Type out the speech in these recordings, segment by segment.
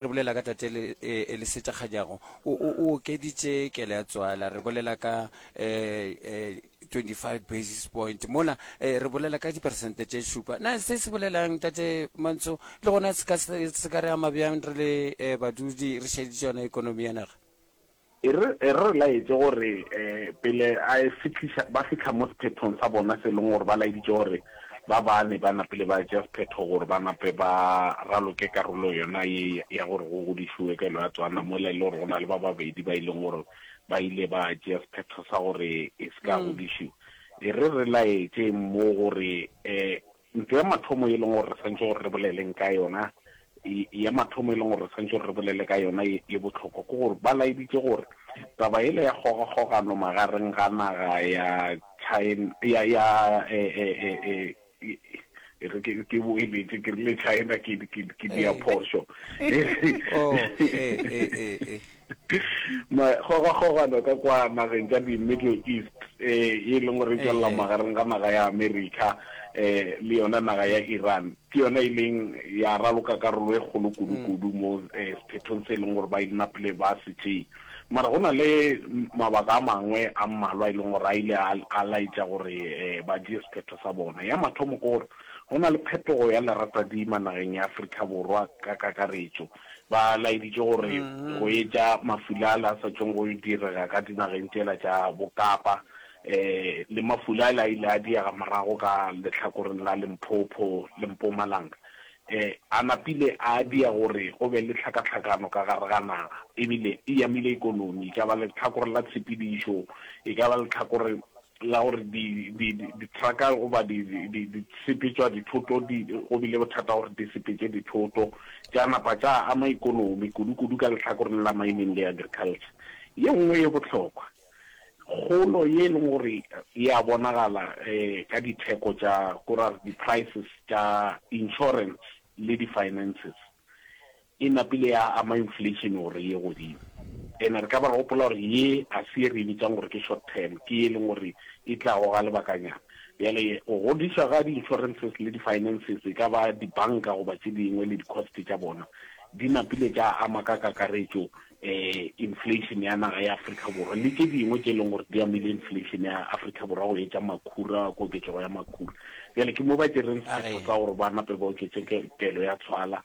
Re bolela ka tate le, eh, le se tša kganyago. O, o, o okeditše kele ya tswala. Re bolela ka, eh, eh, 25 basis point. Mola, eh, re bolela ka diperesente tše šupa. Na se se bolela'ng, Tate Mantso? Le gona se ka, se ka re ama bjang re le, eh, badudi re šeditše yona ekonomi ya naga? E re e re laetše gore pele a e fihliša ba fihla mo sephethong sa bona se leng gore ba laeditše gore ba bane ba napile ba tšea sephetho gore ba nape ba raloke karolo yona ye ya gore go godišiwe kelo ya tswana mola e le gore go na le ba babedi ba e leng gore ba ile ba tšea sephetho sa gore e se ka godišiwa e re re laetše mo gore um Ntho ya mathomo e leng gore re swanetše gore re boleleng ka yona, ya mathomo e leng gore re swanetše gore re bolele ka yona ye e bohlokwa ke gore ba laeditše gore taba yela ya kgogakgogano magareng ga naga ya China, ya, ya, e, e, e, e, e re ke, ke boeletše ke rile China, ke, ke, ke dia phošo. Oh, e, e, e. Magogagogano ka kwa nageng tša di-Middle East e e leng gore e tšwelela magareng ga naga ya America le yona naga ya Iran ke yona e leng ya raloka karolo e kgolo kudu-kudu mo sephethong se e leng gore ba inapile ba se tšee. Mara go na le mabaka a mangwe a mmalwa e leng gore a ile a laetša gore ba tšee sephetho sa bona. Ya mathomo ke gore go na le phetogo ya leratadima nageng ya Afrika Borwa ka kakaretšo. ba laeditše gore go etša mafula ale a sa tšong go yo direga ka dinageng tšela tša Bokapa le mafula ale a ile a diega morago ka lehlakoreng la Limpopo le Mpumalanga a napile a dira gore go be le tlhakatlhakano ka gare ga naga e bile e amile ikonomi, e ka ba lehlakore la tshepedišo, e ka ba lehlakore la gore di, di, di, dithraka goba di, di, di, di sepetšwa dithoto di, go bile bothata gore di sepetše dithoto tša napa tša ama ikonomi kudu-kudu ka lehlakoreng la mining le agriculture. Ye nngwe ye bohlokwa kgolo ye e leng gore e a bonagala um ka ditheko tša ko ra re di-prices tša insurance le di-finances E napile ya ama inflation gore e ye godimo. Ene re ka ba re gopola gore ye ga se ye re e bitsang gore ke short term, ke ye e leng gore e tlago ga lebakanyana. Bjale go godišwa ga di-insurances le di-finances, e ka ba dibanka goba tše dingwe le di-cost tša bona, di napile tša ama ka kakaretšo inflation ya naga ya Afrika Borwa le tše dingwe tše e leng gore di amile inflation ya Afrika Borwa go etša makhura, koketšego ya makhura. Bjale ke mo ba tšereng sephetho sa gore ba nape ba oketše kelo ya tswala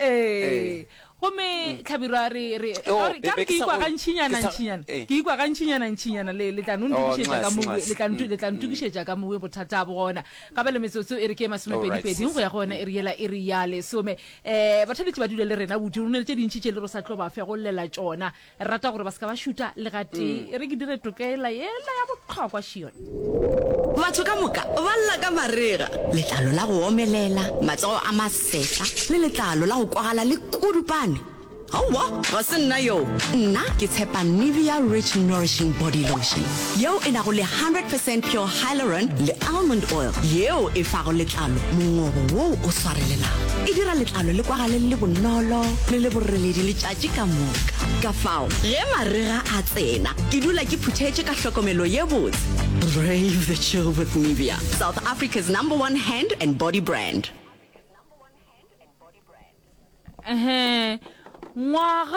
ee gomme mm. tlhabirwa re re oh, ka re ke ikwa ga ntšhinyana ntšhinyana eh. ke ikwa ga ntšhinyana ntšhinyana le le tla no oh, ntukišetša ka mowe le tla le tla mm. ntukišetša ka mowe bothata bo gona ka ba le metsotso e re ke masome pedi pedi go ya go yona e re yela e re ya lesome eh bathabetsi ba dule le rena bodi rone le tše dintši tše le ro sa tlo ba fe go llela tšona rata gore ba se ka ba šuta le gatee e re ke dire tokela yela ya bohlokwa šione Batho ka moka ba lla ka marega, letlalo la go omelela, matsogo a masehla le letlalo la go kwagala le kudupane. Aowa, ga se nna yoo. Nna ke tshepa Nivea Rich Nourishing Body Lotion yeo e nago le 100 percent pure hyaluron le almond oil yeo e fago letlalo mongobo woo o swarelelago. E dira letlalo le kwagale le le bonolo le le boreledi letšatši Tše ka moka. Ka fao, ge marega a tsena, ke dula ke phuthetše ka hlokomelo ye botse. Brave the chill with Nivea, South Africa's number one hand and body brand. Ehe, ngwaga